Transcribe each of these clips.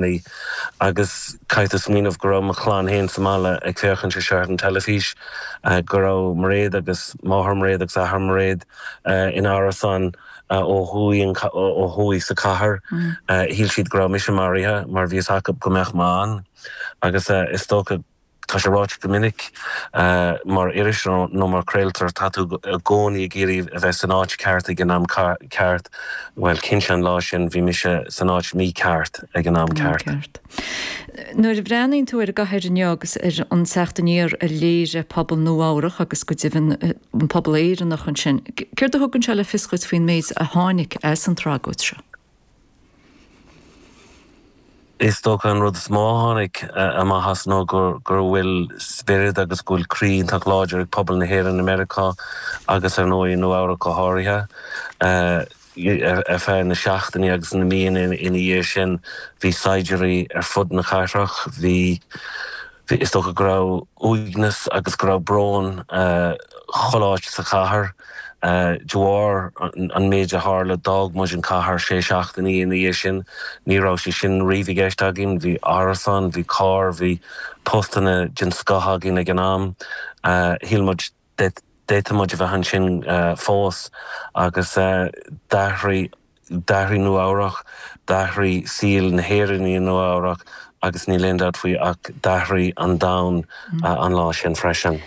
Ní. Agus caithfidh tú smaoineamh go raibh mo chlann féin sa mbaile ag féachaint ar sheicheamh an teilifís, go raibh Mairéad agus máthair Mhairéad agus athair Mhairéad in árasán ó thuaidh sa cathair. Shíl siad go raibh mise maraithe mar bhí fhios acu go mbeadh mé ann. Agus is dócha. Tá sé ráite go minic mar iris nó mar craoltóir, tá tú i gcónaí ag iarraidh a bheith san áit ceart ag an am ceart. Bhuel, cinnte an lá sin bhí mise san áit mhícheart ag an am ceart. Nuair a bhreathnaíonn tú ar an gcathair inniu agus ar an teacht aniar a léirigh pobal Nua Eabhrach agus go deimhin an pobal Éireannach ansin, céard a thugann sé le fios dhuit faoin méid a tháinig as an tragóid seo? Is dócha an rud is mó a tháinig amach as ná go bhfuil spiorad agus go bhfuil croí iontach láidir ag pobal na hÉireann i Meiriceá agus ar ndóigh i Nua Eabhrac go háirithe. Ar feadh na seachtainí agus na míonna ina dhiaidh sin bhí saighdiúirí ar fud na cathrach, bhí. Is dócha go raibh uaigneas agus go raibh brón chuile áit sa chathair. De bharr an méid a tharla, d'fhág muid an cathair sé seachtainí ina dhiaidh sin. Ní raibh sé sin riamh i gceist againn. Bhí árasán, bhí carr, bhí postanna den scoth againn ag an am. Shíl muid D'fhéadfadh muid a bheith ansin fós agus d'athraigh, d'athraigh Nua Eabhrach, d'athraigh saol na nÉireannaí i Nua Eabhrach agus níl aon dabht faoi ach d'athraigh an domhan an lá sin freisin.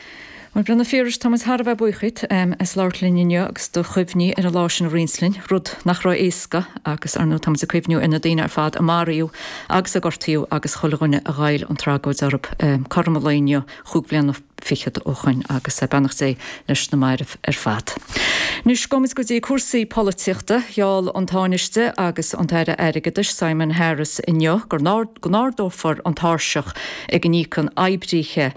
Mar Breanna Phiarais, tá muid thar a bheith buíoch díot as labhairt linn inniu agus do chuimhní ar an lá sin a roinnt linn, rud nach raibh éasca agus, ar ndóigh, tá muid ag cuimhniú ar na daoine ar fad a maraíodh agus a gortaíodh agus chuile dhuine a ghoill an tragóid orthu. Cothrom an lae inniu chúig bliana. fichead ó shoin agus beannacht Dé leis na mairbh ar fad. Anois gabhaimid go dtí cúrsaí polaitíochta. Gheall an Tánaiste agus an tAire Airgeadais Simon Harris inniu go n-ardófar an tairseach ag a n-íocann oibríthe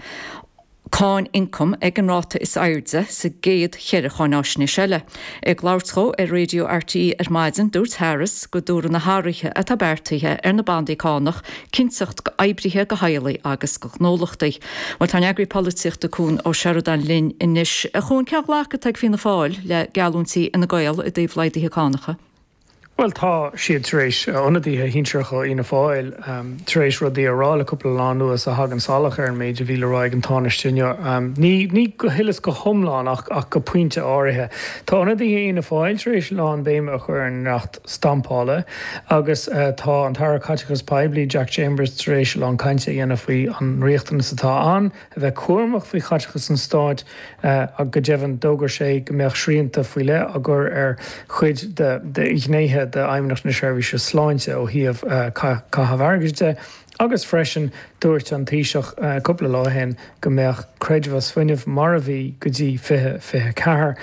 cáin ioncaim ag an ráta is airde sa gcéad cheithre cháinaisnéis eile. Ag labhairt dhó ar Raidio RTÉ ar maidin, dúirt Harris go dtabharfaidh na hathruithe atá beartaithe ar na bandaí cánach cinnteacht do oibrithe, do theaghlaigh agus do ghnólachtaí. Bhuel, tá ár n-eagraí polaitíochta Cuan Ó Seireadáin linn anois. Cuan, cén glacadh atá ag Fianna Fáil le geallúintí Fhine Gael i dtaobh laghdaithe cánacha? Bhuel, tá siad tar éis, ionadaithe sinsearacha ó Fhianna Fáil tar éis rudaí a rá le cúpla lá anuas a thagann salach ar an méid a bhí le rá ag an Tánaiste inniu. Ní, ní go huile is go hiomlán ach, ach go pointe áirithe. Tá ionadaithe Fhianna Fáil tar éis lán béime a chur ar an dleacht stampála agus tá an tAire Caiteachais Poiblí, Jack Chambers, tar éis a lán cainte a dhéanamh faoi an riachtanas atá ann a bheith cúramach faoi chaiteachas an Stáit ach go deimhin d'fhógair sé go mbeadh srianta faoi leith á gcur ar chuid de ghnéithe d'Fheidhmeannacht na Seirbhíse Sláinte ó thaobh caitheamh airgid de agus freisin dúirt an Taoiseach cúpla lá ó shin go mbeadh creidmheas fuinnimh mar a bhí go dtí 2024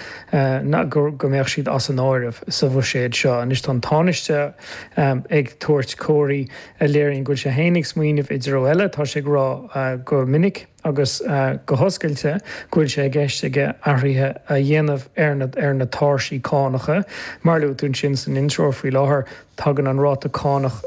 go mbeadh siad as an áireamh sa bhuiséad seo. Anois tá an Tánaiste ag tabhairt comharthaí. a léiríonn go bhfuil sé féin ag smaoineamh i dtreo eile, tá sé ag rá go minic agus go hoscailte go bhfuil sé i gceist aige athruithe a dhéanamh ar na tairsí cánacha. Mar a luaigh tú ansin san intreoir faoi láthair, tagann an ráta cánach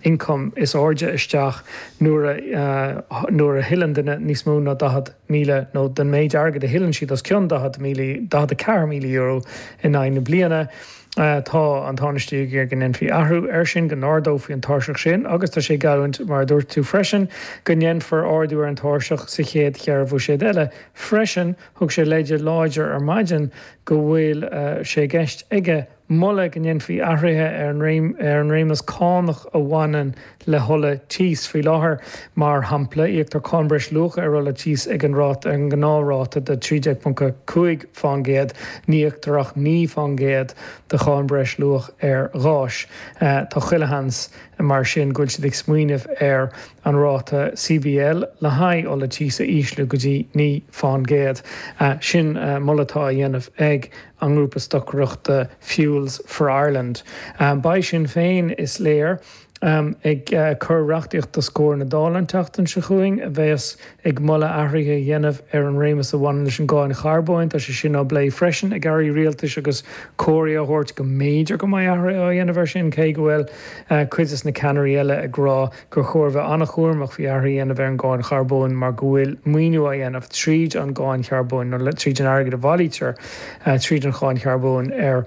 ioncaim is airde isteach nuair a thuilleann duine níos mó ná 40,000, nó den méid airgid a thuilleann siad os cionn 40,000, €44,000 in aghaidh na bliana. Tá an Tánaiste ag iarraidh go ndéanfaí athrú air sin, go n-ardófaí an tairseach sin agus tá sé ag geallúint, mar a dúirt tú freisin, go ndéanfar ardú ar an tairseach sa chéad cheithre bhuiséad eile. Freisin, thug sé leid láidir ar maidin go bhfuil sé i gceist aige moladh go ndéanfaí athruithe ar an réimeas cánach a bhaineann le hola tíos. Faoi láthair, mar shampla, íoctar cáin breis luacha ar ola tíos ag an ráta, an gnáthráta de 13.5 faoin gcéad, ní íoctar ach 9 faoin gcéad de cháin breis luacha ar ghás. Tá chuile sheans, mar sin, go bhfuil siad ag smaoineamh ar an ráta CBL le haghaidh ola tíos a ísliú go dtí 9 faoin gcéad. Sin moladh atá á dhéanamh ag an ngrúpa stocaireachta Fuels for Ireland. Beidh Sinn Féin, is léir, ag cur reachtaíocht os comhair na Dála an tseachtain seo chugainn a bheas ag moladh athruithe a dhéanamh ar an réimeas a bhaineann leis an gcáin charbóin. Tá sé sin á phlé freisin ag airí rialtais agus comharthaí á dtabhairt go mb'fhéidir go mbeidh athruithe á dhéanamh air sin, cé go bhfuil cuid de na ceannairí eile ag rá gur chóir a bheith an-chúramach faoi athruithe a dhéanamh ar an gcáin charbóin mar go bhfuil maoiniú á dhéanamh tríd an gcáin charbóin, nó tríd an airgead a bhailítear tríd an cháin charbóin, ar.